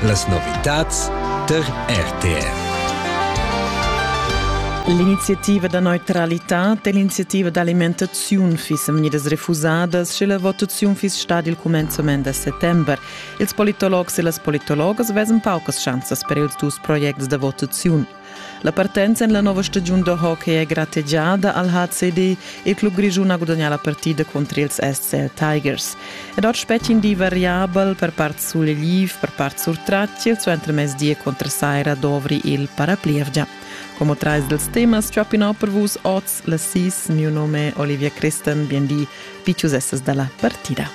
Las novitads tar RTR. L'iniziativa da neutralitad e l'iniziativa d'alimentaziun fissen vegnidas refusadas, sche la votaziun fiss stada il cumenzament da settember. Ils politologs e las politologas vesan paucas schanzas per ils dus projects da votaziun. La partenza en la nova stagiun da hockey è grategiada al HCD e il club grischun ha gudagnà la partida contra ils SCL Tigers. Ed ord spetg in di variabel per part sul Liv, per part sur Tratschil, su entremezdi contra Saira dovri il paraplievgia. Como trais dels temas Choppin per vus oz la sis, mio nome è Olivia Christen, bien di, piccius essas dalla partida.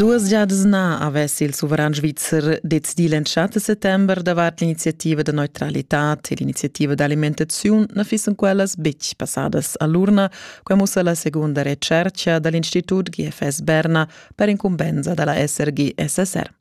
Duas giadas na avess il suveran svizzer decidì l'entschatta settember davart l'iniziativa da neutralitad e l'iniziativa d'alimentaziun na fissan quellas betg passadas a l'urna. Quai mussa la segunda retschertga da l'Institut GFS Berna per incumbensa da la SRG-SSR.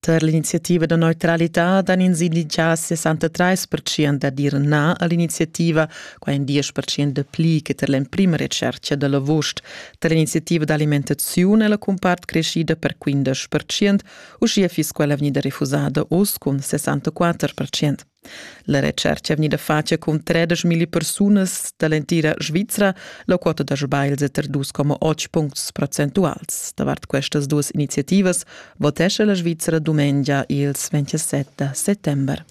Tar l'iniziativa da neutralitad han ins inditgà 63 percent da dir na a l'iniziativa, quai in 10 percent da pli che tar l'emprima retschertga da l'avust. Tar l'iniziativa d'alimentaziun è la cumpart creschida per 15 percent, uschia fiss quella vegnida refusada oz cun 64 percent. La retschercha è vegnida fatga cun tredesch milli persunas da l'entira Svizra. La quota da sbagls è tar 2,8 puncts percentuals. Davart questas duas iniziativas votescha la Svizra dumengia ils 27 da settember.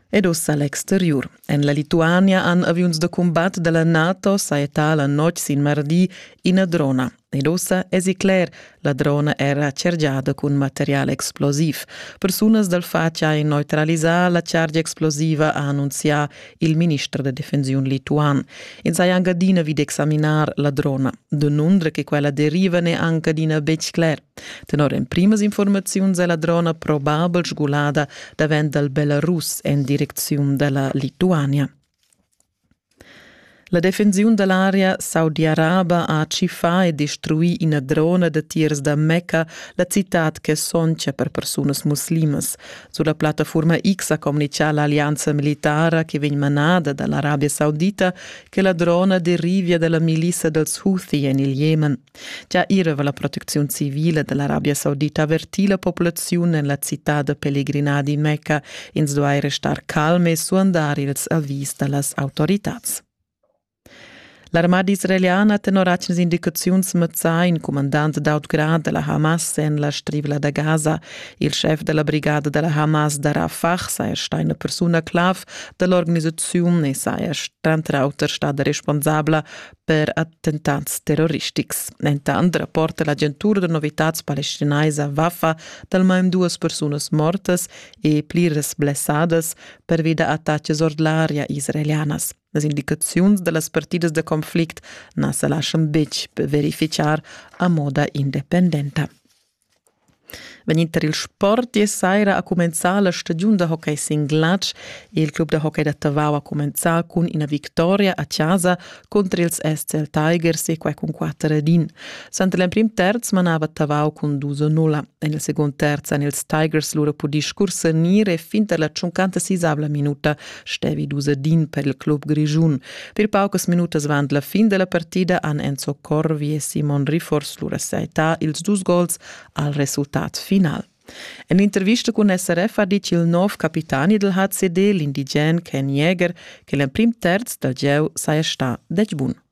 Ed ussa l'exteriur. En la Lituania han aviuns da combat da la NATO sajetà la notg sin mardi ina drona. Ed ussa esi cler, la drona era chargiada cun material explosiv. Persunas dal fatg han neutralisà la chargia explosiva, ha annunzià il minister da defensiun lituan. Ins ha anche adina vid examinar la drona. Denunzia che quella deriva ne anche adina betg cler. Tenor emprimas informaziuns è la drona probabel sgulada davent dal Belarus en direcziun dalla Lituania. La defensiun da l'aria saudiaraba ha tschiffà e destruì ina drona datiers da Mecca, la citad ch'è sontga per persunas muslimas. Sulla plattafurma X ha communitgà l'allianza militara che vegn manada da l'Arabia Saudita che la drona derivia da la milissa dals Houthi en il Jemen. Gia ira va la protecziun civila dall'Arabia Saudita averti la populaziun en la città da pelegrinadi Mecca. Ins duai restar calm e suandar ils avis dallas autoritads. L'armada israeliana tenor atgnas indicaziuns mazzà in comandant d'autgrad della Hamas en la strivla da Gaza. Il chef della brigada della Hamas da Rafah saja stà una persona clav dell'organisazione e saja trant'auter stada responsabla per attentats terroristics. Entant rapporta l'agentura da novitads palestinaisa Wafa d'almain duas persunas mortas e pliras blessadas pervi da attacks ord l'aria israelianas. Las indicaziuns da las partidas da conflict na sa laschan betg verifichar a moda independenta. Vegnind tar il sport ier saira ha cumenzà la stagiun da hockey sin glatsch e il club da hockey da Tavau ha cumenzà cun ina victoria a chasa cunter ils SCL Tigers e quai cun quatter ed in. Suenter l'emprim terz manava Tavau cun dus a nulla. En il secund terz han ils Tigers lura pudì scursernir e fin tar la tschuncanta sisavla minuta stevi dus din per il club grischun. Per paucas minutas avant la fin della partida han Enzo Corvi e Simon Riffors lura saità ils dus gols al resultat final. En intervista cun SRF ha dit il nov capitani del HCD, l'indigen Ken Jäger, che l'emprim terz dal gieu saja sta dec bun.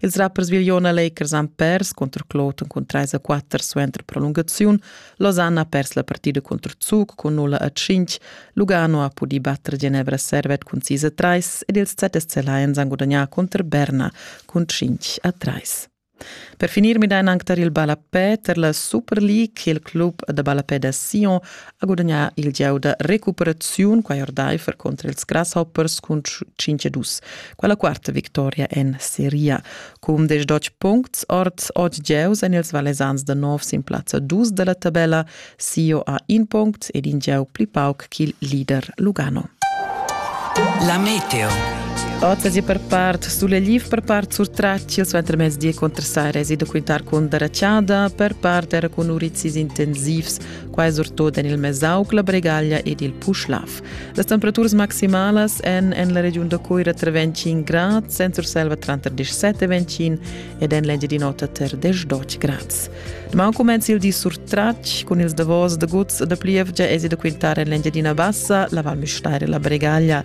Ils rappers Vigliona Lakers han pers cunter Cloton cun 3 a 4 suenter prolungaziun. Losanna ha pers la partida cunter Zug cun 0 a 5. Lugano ha pudì batter Genevra Servet cun 6 a 3 ed ils ZSC Lions han gudagnà cunter Berna cun 5 a 3. Per finir midain anc tar il ballapè, tar la Super League. Il club da ballapè da Sion ha gudagnà il gieu da recuperaziun quai ordaifer contra ils Grasshoppers cun 5-2. Quella quarta victoria en Serie. Cun 18 puncts ord 8 gieus en ils Valesans da nov sin plazza 2 da la tabella. Sio ha in punct ed in gieu pli pauc ch'il leader Lugano. La Meteo Otas e per part sulle Liv per part sur Traccio suenter mezdi contra Sairesi da quintar con Daracciada per part era con Urizis intensivs quai surtut en il Mesauc, la Bregaglia ed il Puschlav. Las temperaturas maximalas èn en la regiun da Coira tra 25 grad, en Surselva tranter 17 e 25 ed en l'Engiadin'Ota tar 18 grad. Demà cumenza il di surtratg cun ils davos da guts da plievgia e da quintare en l'Engiadina Bassa, la Val Müstair e la Bregaglia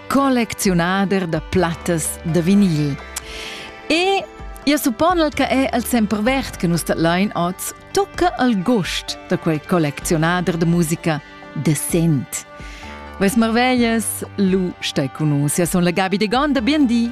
collecziunader da plattas da vinil. E ia supponel che è al sempervert che nus datlein oz tocca al gost da quel collecziunader de musica decent. Ves marvellas, lu stai con nus, ja son la Gabi de Gonda, bien di!